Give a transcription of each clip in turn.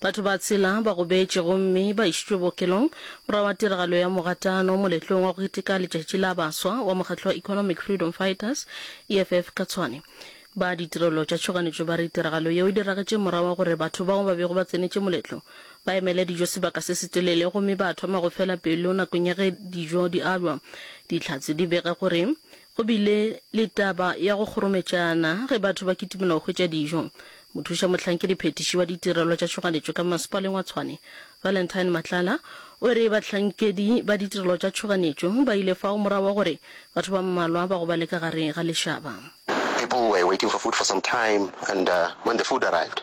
Batho ba tshela ba gobetše gomme ba išitšwe bookelong morago ga tiragalo ya mogatano moletlong wa go keteka letšatši la baswa wa mokgatlo wa Economic Freedom Fighters, EFF, ka Tshwane. Ba ditirelo tša tšhoganetšo ba re tiragalo yeo e diragetše morago ga gore batho bao ba bego ba tsenetše moletlo ba emele dijo sebaka se setelele gomme ba thoma go fela pelo nakong ya ge dijo di alwa. Dihlatse di bega gore Go bile le taba ya go kgorometšana ge batho ba kitimela go hwetša dijo. Mothuša-mohlankedi-phethiši wa ditirelo tša tšhoganetšo ka Mmasepaleng wa Tshwane, Valentine Matlala, o re bahlankedi ba ditirelo tša tšhoganetšo ba ile fao morago wa gore batho ba mmalwa ba gobale ka gare ga lešaba. People were waiting for food for some time and when the food arrived,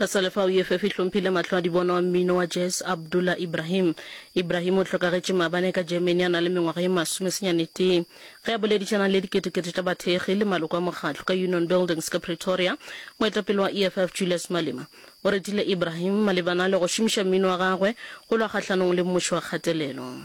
Re sa le fao, EFF e hlomphile mahlo a dibono a mmino wa jazz Abdullah Ibrahim. Ibrahim o hlokagetše maabane ka Germany a na le mengwaga ye masome senyane tee. Ge a boledišana le diketekete tša bathekgi le maloko a mokgatlo ka Union Buildings ka Pretoria, moetapele wa EFF Julius Malema o retile Ibrahim malebana le go šomiša mmino wa gagwe go lwa kgahlanong le mmušo wa kgatelelo.